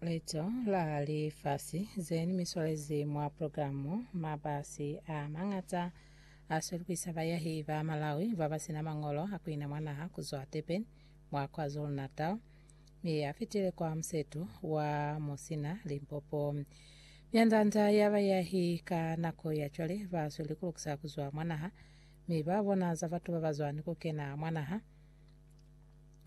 Leto la lifasi ze ni miswalezi mwa programu, mabasi a mañata a swelukisa bayahi ba Malawi ba ba sina mañolo a kuina mwa naha kuzwa Durban mwa KwaZulu-Natal mi a fitile kwa musetu wa Musina, Limpopo. Myanda-nda ya bayahi ka nako ya cwale ba sweli ku lukisa kuzwa mwa naha mi ba bona za batu ba ba zwani ku kena mwa naha.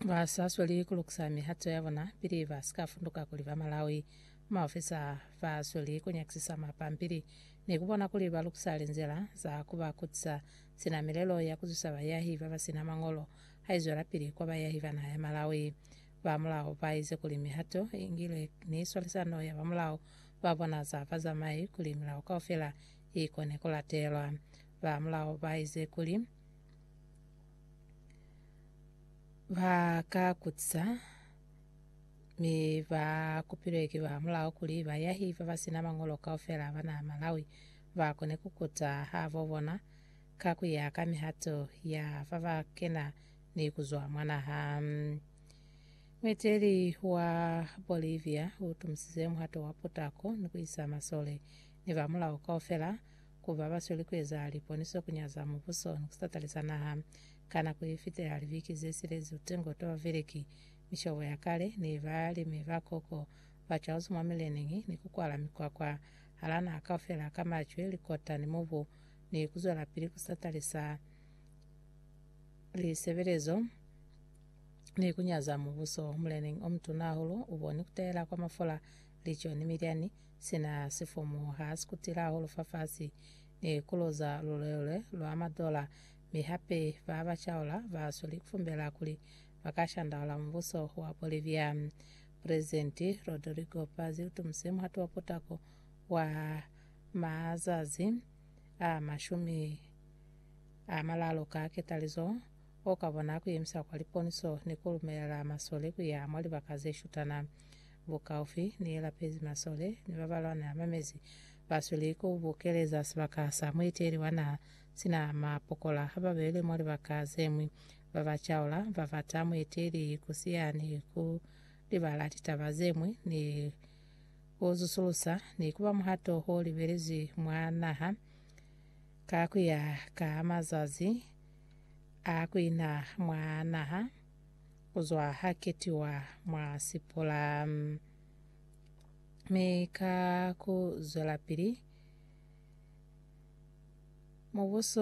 ba sa sweli ku lukisa mihato ya bona pili ba si ka funduka kuli ba Malawi. Maofisa ba sweli ku nyakisisa mapampili ni ku bona kuli ba lukisa linzila za ku ba kutisa sina milelo ya ku zwisa bayahi ba ba si na mañolo ha i zwelapili kwa bayahi ba naha ya Malawi. Ba mulao ba ize kuli mihato i ngilwe ni swalisano ya ba mulao ba bona za bazamai kuli milao kaufela i kone ku latelwa. Ba mulao ba ize kuli. ba ka kutisa mi ba kupilwe ki ba mulao kuli bayahi ba ba sina mañolo kaufela ba naha Malawi ba kone ku kuta habo bona ka ku ya ka mihato ya fa ba kena ni ku zwa mwa naha. Mueteli wa Bolivia u tumisize muhato wa putako ni ku isa masole ni ba mulao kaufela Ku ba ba sweli ku eza liponiso ku nyaza mubuso ni ku satalisa naha. Ka nako ye fitela libiki ze silezi utengo twa Baveleki, mishobo ya kale ne ba limi ba koko ba cwaluzi mwa mileneñi ni ku kwala mikwakwa hala naha kaufela ka macwe, likota ni mubu, ni ku zwelapili ku satalisa lisebelezo ni ku nyaza mubuso. Muleneñi o mutuna hahulu u boni ku tahela kwa mafula, lico, ni milyani. Sina sifomu ha si kutila hahulu fafasi ni kuloza lulwelwe lwa madola, mi hape ba ba caula ba sweli kufumbela kuli ba ka shandaula mubuso wa Bolivia. Presidenti Rodrigo Paz utumuse muhati wa potako wa mazazi a mashumi a malalu ka ketalizo o ka bona kuyemisa kwa liponiso ni kulumelela masole kuya mwa libaka ze shutana. Bukaufi ni ye lapezi masole ni ba ba lwana mamezi ba sweli ku bukeleza sibaka sa mueteli wa naha sina mapokola ha ba bele mwa libaka ze ñwi. Ba ba caula ba bata mueteli ku siya ni ku libala litaba ze ñwi ni ku zusulusa ni ku ba muhato o libelezwi mwa naha ka ku ya ka mazazi a ku ina mwa naha. kuzwa ha ketiwa mwa sipola. Mi ka ku zwelapili, Mubuso